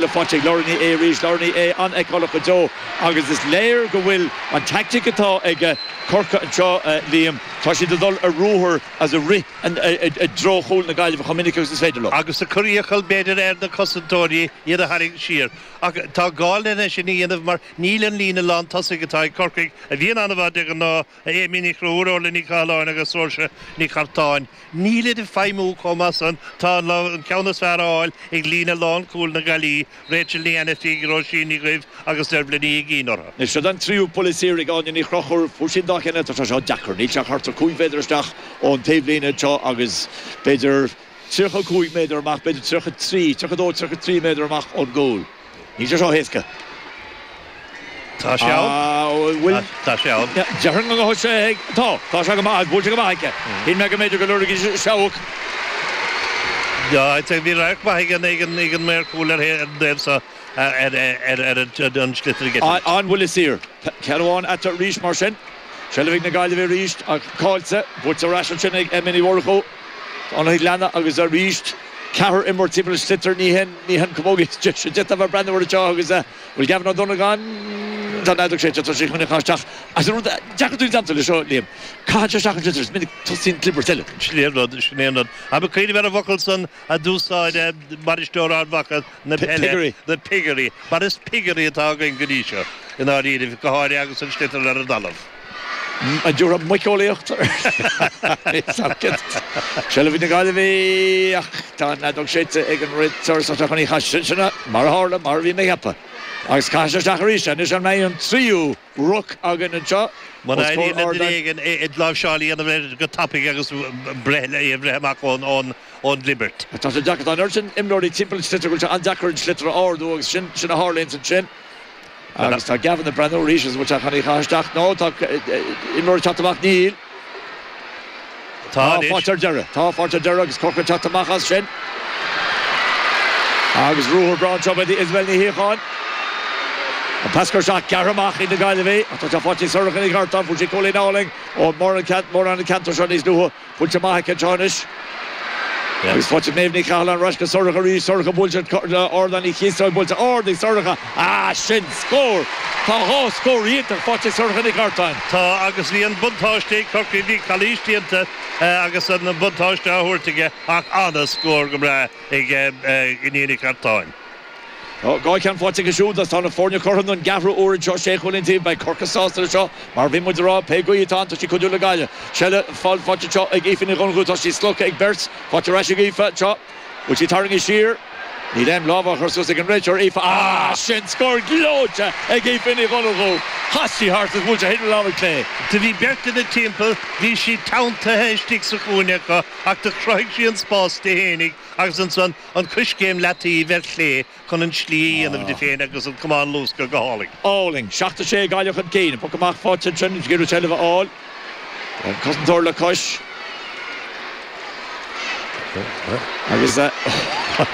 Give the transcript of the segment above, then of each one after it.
le faighte ag Laura Ní Aodha arís, Laura Ní Aodha an-fheiceálach go deo agus is léir go bhfuil an teaictic atá ag Corcaigh anseo, Liam, tá siad ag dul ar ruathar agus ag rith i dtreo chúl na Gaillimhe chomh minic agus is féidir leo. Agus ag cur iachall, b'fhéidir, ar na cosantóirí iad a tharraingt siar. Ach tá gá lena sin a dhéanamh mar níl an líne lántosaigh atá ag Corcaigh, a bhíonn an-mhaith de ghnáth, Amy Ní Chonchúir, Orlaith Ní Chathalláin agus Sorcha Nic Artáin, nílid ag feidhmiú chomh maith san, tá an ceann is fearr á fháil ag líne lánchúil na Gaillimhe, Rachel Ní Ainifígh, Róisín Ní Dhuibh agus Dervla Ní Uiginn orthu. Anois seo é an tríú buille saor ag Amy Ní Chonchúir, fuair sí an dá cheann eile, tá sé seo deacair, níl sé ach thart ar 5 mhéadar isteach ón taobhlíne anseo agus b'fhéidir 35 méadar amach, b'fhéidir 33, 32, 33 méadar amach ón gcúl. Níl sé seo héasca. Tá sé ann. Ah, bhuel, bhuel. Tá sé ann. Déarfainn go mbeadh sé ag, tá, tá sé go maith, buailte go maith aici. Shíl mé go mb'fhéidir go lorgódh sí seabhac. Tá, tá, bhí radharc maith ag an, ag an, ag an maor cúil ar an taobh so, ar, ar, ar an sliotar ag eitilt. An bhuille saor. Ceann amháin eatarthu arís mar sin. Seilbh ag na Gaillimhigh arís ach caillte, buaite ar ais ansin ag Emma Ní Mhurchú. Tháinig leanna agus arís ceathrar imreoir timpeall an sliotar. Ní hin í an chamógaíocht is deise le bheith ag breathnú air anseo agus an bhfuil Gavin Ó Donagáin Tá an fheadóg séidte, tá sé chun í a chaitheamh isteach agus an rud is deacra dúinn domsa leis seo, Liam, caitheann sé isteach an sliotar, is minic tosaíonn clibirt eile. Sin é an rud, sin é an rud. An bhfuil cuimhneamh ar an bhfocal san a d'úsáid bainisteoir Ard Mhacha na peile, na piggery, mar is piggery atá againn go dtí seo, i ndáiríribh, go háirithe agus an sliotar ar an dtalamh. Déarfá muiceolaíocht ar aon saghas. Seilbh ag na Gaillimhigh ach tá an fheadóg séidte ag an réiteoir is tá sé chun í a chaitheamh isteach. Sin mar a tharla, mar a bhí mé a cheapadh. Agus caithfidh sé isteach arís é. Anois ar an tríú. ruc againn anseo os comhair ár. Muna éiríonn le duine éigint láimhseáil a dhéanamh air go tapaidh agus breith é a bhreith amach ón gclibirt. Tá sé deacair. Tá an oiread sin imreoirí timpeall an sliotair go bhfuil sé an-deacair an sliotar a ardú agus sin, sin a tharlaíonns ansin. Agus tá Gavin ag breathnú arís agus an bhfuil sé chun í a chaitheamh isteach? No, tá imreoir ag teacht amach, níl. Tá faighte ar deireadh. Tá faighte ar deireadh agus Corcaigh ag teacht amach as sin. Agus ruathar breá anseo ba ea Isabel Ní Shíocháin. An pas gearr seo gearrtha amach ag na Gaillimhigh ach tá sé faighte ag Sorcha Nic Artáin. Fuair sí cúilín álainn ó mórán an ceantar seo níos luaithe. Buaileann sí amach an ceann seo anois. Agus faighte ag Méabh Ní Chathalláin ar ais go Sorcha arís, Sorcha buailte ard lena ciotóg buailte ard ag Sorcha ah sin scór! Tá dhá scór iontach faighte ag Sorcha Nic Artáin. Tá agus bhí an buntáiste ag Corcaigh, bhí calaois déanta agus an buntáiste á thabhairt aige ach an-scór go breá ag Iníon Nic Artáin. Dhá cheann faighte aige siúd agus tá na foirne cothrom don gceathrú uair anseo sé chúilín an taobh. Beidh Corcaigh sásta leis seo mar bhí muid ag rá pé gaoth atá ann tá sí ag cuidiú le Gaillimh. Seilbh faighte anseo ag Aoife Ní Dhonnchú tá sí slogtha ag beirt. Faighte ar ais ag Aoife anseo. Bhfuil sí tarraingthe siar? Níl aon lámh á chur suas ag an réiteoir. Aoife, ah! Sin scór gleoite ag Aoife Ní Dhonnchú. Chas sí thart agus bhuail sí de thaobh na láimhe clé. Do bhí beirt ina timpeall, bhí sí teanntaithe istigh sa chúinne acu ach do chruthaigh sí an spás di fhéinig agus ansan an coiscéim leataoibh ar chlé chun an tslí a dhéanamh di féin agus an camán a luascadh go hálainn. álainn. Seacht a sé Gaillimh chun cinn. An poc amach fá Tintern agus ag iarraidh seilbh a fháil ar an cosantóir le cois. Agus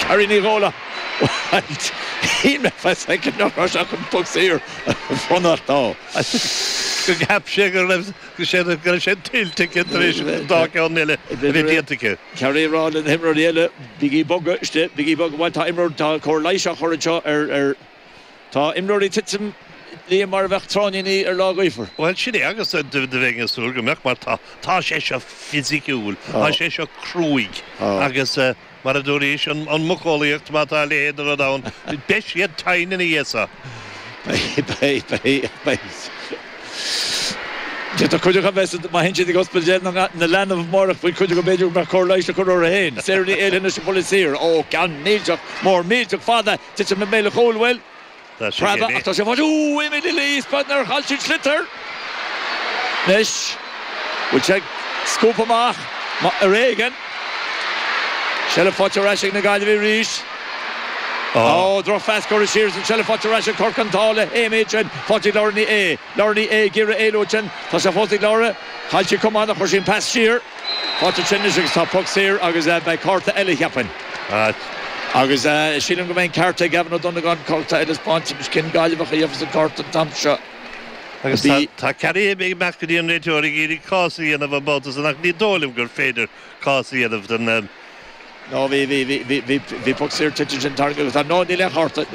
Carrie Ní Dhúláin, bhuel, shíl mé fá soicind nach raibh sé ach chun poc saor a bhronnadh dó. Go gceapfadh sé go raibh sé tuillte aici tar éis an dá cheann eile a bheith déanta aici. Carrie ag rá le na himreoirí eile? Bígí ag bogadh istigh, bígí ag bogadh, bhuel tá imreoir, tá cóir leighis á chur anseo ar, ar, tá imreoirí ag titim, liath mar a bheadh tráithníní ar lá gaofar. Bhuel, sin é, agus do bheinn ag súil go mbeadh, mar tá, tá sé seo fisiciúil, tá sé seo cruaidh, agus mar a dúraís, an mhuiceolaíocht, má tá a leithéid de rud ann, beidh siad tinn ina dhiaidh seo. Beidh, beidh, beidh, beidh. D'fhéadfadh cuid acu a bheith sa, má théann siad go hospidéal de, na, na leanbh amárach faoi chuid acu b'fhéidir go mbeadh cóir leighis le cur orthu féin. Sarah Ní Éalaithe leis an bpoc saor. Ó, ceann millteach, mór millteach, fada, titim i mbéal an chúil, bhuel, preabadh, ach tá sé faighte, Ooh, Amy Ní Laoi is beag nár chaill sí an sliotar. Anois, bhfuil sé ag scuabadh amach, mar, ar éigean. Seilbh faighte ar ais ag na Gaillimhigh arís. Ó, drochphas curtha siar agus an tseilbh faighte ar ais ag Corcaigh an t-ádh le hAmy ansin. Faighte ag Laura Ní Aodha. Laura Ní Aodha ag iarraidh éalú ansin. Tá sé fós ag Laura. Chaill sí a camán ach chuir sí an pas siar. Faighte ansin anois agus tá poc saor agus beidh cárta eile, cheapfainn. Agus sílim go mbeidh an ceart ag Gavin Ó Donegáin. Cárta eile á thaispeáint anois cén Gaillimheach a gheobhas an cárta an t-am seo. Agus tá Carrie ag imeacht go dtí an réiteoir ag iarraidh cás a dhéanamh an babhta san ach ní dóigh liom gur féidir cás a dhéanamh dó. Ná bhí, bhí, bhí, bhí, bhí poc saor tuillte ansin tarraingthe agus tá, no, níl aon chárta, níl.